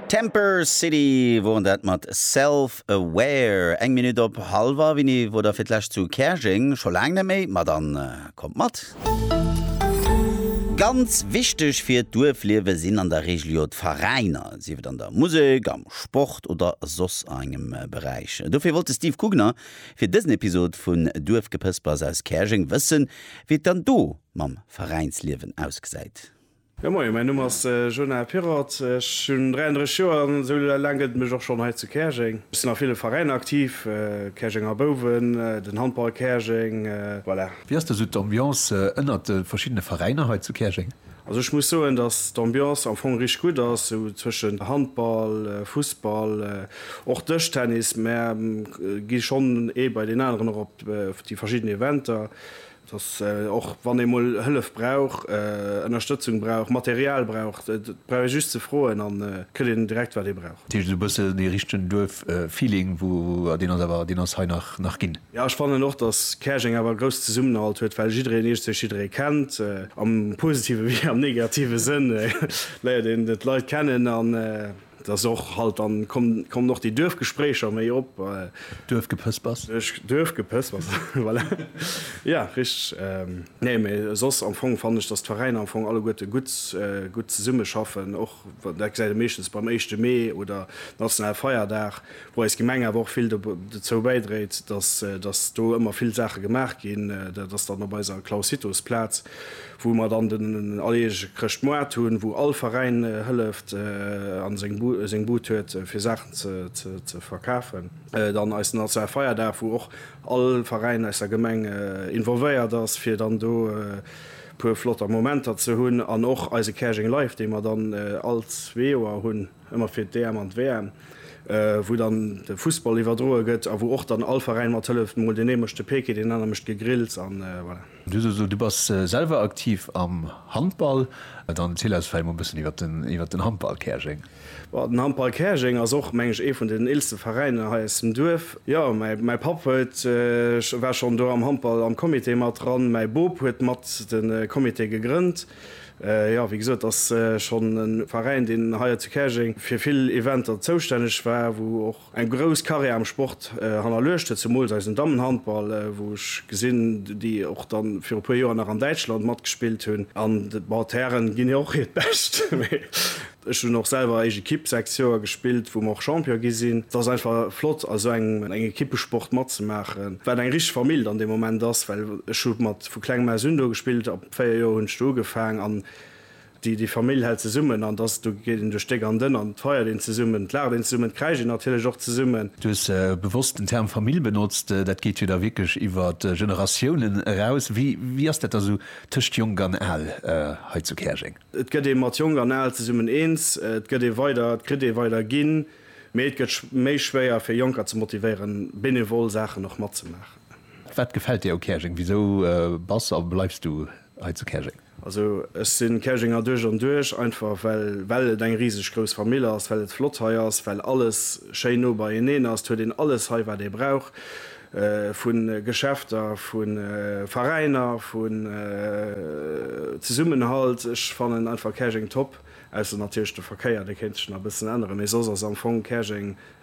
Temper City woren dat mat Self Aware. Eng Minutt op halwer Wini wor der fir d'lescht zu Käerjeng, scho laang net méi, ma dann kommt mat. Ganz wichteg fir d'Duerfliewe sinn an der Regel jo d'Veräiner, sief et an der Musek, am Sport oder soss a engem Beräich. Dofir wollt de Steve Kugner fir dësen Episod vun Duerfgepëspers aus Käerjeng wëssen, wéi et dann do mam Veräinsliewen ausgesäit. Jo moien, mäin Numm ass Jonah Pirrott, ech hunn 33 Joer an esou laang gëtt et mech och schonn hei zu Käerjeng. Ech sinn a ville Veräiner aktiv, Käerjenger Bouwen, den Handball Käerjeng, voilà. Wéi ass da sou d'Ambiance ënnert de verschiddene Veräiner hei zu Käerjeng? Also ech muss soen, datt d'Ambiance am Fong richteg gutt ass, sou zwëschent Handball, Fussball, och Dëschtennis, mä gi schonn ee bei deen aneren och op déi verschidden Eventer, Dass och wann ee mol Hëllef brauch, Ënnerstëtzung brauch, Material brauch, et brauch ee just ze froen an et kritt een direkt wat ee brauch. Dat heescht esou e bëssen dee richtegen Duerf-Feeling, wou deen ass awer, deen ass hei nach ginn. Jo, ech fannen och, dass Käerjeng awer e grousse Zesummenhalt huet, well jiddereen iergenzwousch jidderee kennt, am positive wéi am negative Sënn léiert een d'Leit kennen an. Et ass och halt, dann kommen och déi Duerfgespréicher méi op. Duerfgepëspers. Duerfgepëspers, voilà. Jo, richteg. Nee, mee soss am Fong fannen ech, dass d'Veräiner am Fong alleguerte gutt, gutt zesummeschaffen. Och, dat gesäit ee meeschtens beim éischte Mee oder nationale Feierdag, wou eis Gemeng awer och vill dozou bäidréit, dass, dass do ëmmer vill Saache gemaach ginn. Dat ass dann op eiser Claus-Hittos-Plaz, wou mer dann den alljährege Chrëschtmoart hunn, wou all Veräin hëlleft a seng Bud huet fir Saachen ze verkafen. Dann eisen nationale Feierdag, wou och all Veräin aus der Gemeng involvéiert ass, fir dann do puer flotter Momenter ze hunn an och eise Käerjeng Live, dee mer dann all zwee Joer hunn, ëmmer fir d'EM an d'WM, wou dann de Fussball iwwerdroe gëtt a wou och dann all Veräin mat hëlleft, mol den ee mécht de Peeke, deen anere mécht d'Gegrills an voilà. Du hues gesot, du bass selwer aktiv am Handball. Dann erziel eis vläicht mol e bëssen iwwert den Handball Käerjeng. Bon, den Handball Käerjeng ass och, meng ech, ee vun den eelste Veräiner hei aus dem Duerf. Jo, mäi Papp huet, war schonn do am Handball am Comité mat dran. Mäi Bop huet mat de Comité gegrënnt. Jo, wéi gesot, ass schonn e Veräin, deen hei zu Käerjeng fir vill Eventer zoustänneg war, wou och. Eng grouss Carrière am Sport hannerluecht huet zemools eisen Dammenhandball, wou ech gesinn, déi och da viru puer Joer nach an Däitschland matgespillt hunn. An bon, d'Hären ginn jo och hiert Bescht, mee ech hunn och selwer eischt Ekipp sechs Joer gespillt, wou mer och Champion gi sinn. Et ass einfach flott a sou engem Ekippesport matzemaachen, wat eng richteg Famill dann dee Moment ass, well ech hu mat vu klengem aus un do gespillt, ab véier Joer hunn ech do ugefaang an Déi, déi Famill hält zesummen an dass, do geet een duerch déck an dënn an et feiert een zesummen, et laacht een zesummen, et kräischt een natierlech och zesummen. Du hues bewosst den Term Famill benotzt. Dat geet jo da wierklech iwwer Generatiounen eraus. Wéi, wéi ass dat da sou tëscht Jonk an Al hei zu Käerjeng? Et gëtt ee mat Jonk an Al zesummen eens, et gëtt ee weider, et kritt ee weider ginn, mee et gëtt méi schwéier fir Jonker ze motivéieren, benevol Saachen och matzemaachen. Wat gefält dir u Käerjeng? Wisou bass a bleifs du hei zu Käerjeng? Also ech si Käerjenger duerch an duerch, einfach well well et eng riseg grouss Famill ass, well et flott hei ass, well alles schéin no beieneen ass. Et huet een alles hei wat ee brauch, vu Geschäfter, vu Veräiner, vun Zesummenhalt. Ech fannen einfach Käerjeng top, ausser natierlech de Verkéier, dee kéint sech nach e bëssen änneren, mee soss ass am Fong Käerjeng